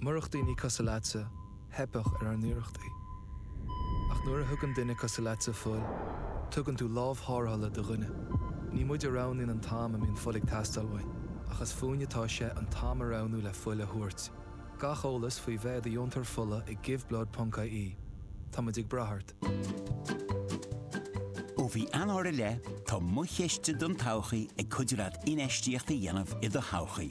Murach daoine cosúil leatsa, theipfeadh ar ár n-iarrachtaí. Ach nuair a thugann duine cosúil leatsa fuil, tugann tú lámh tharrthála do dhuine. Ní muid a roghnaíonn an t-am a mbíonn fuil ag teastáil uainn, ach is fúinn atá sé an t-am a roghnú le fuil a thabhairt. Gach eolas faoi bheith i do dheontóir fola ag Giveblood ponc IE. Tá muid ag brath ort. Ó mhí Eanáir i leith, tá Mo Chiste don Todhchaí ag cuidiú leat infheistíocht a dhéanamh i do thodhchaí.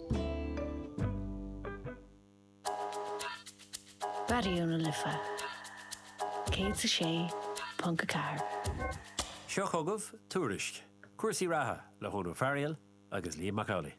Raidió na Life 106.4. Seo chugaibh Tuairisc, cúrsaí reatha le hÓdhrán Ó Fearaíl agus Liam Mac Amhlaigh.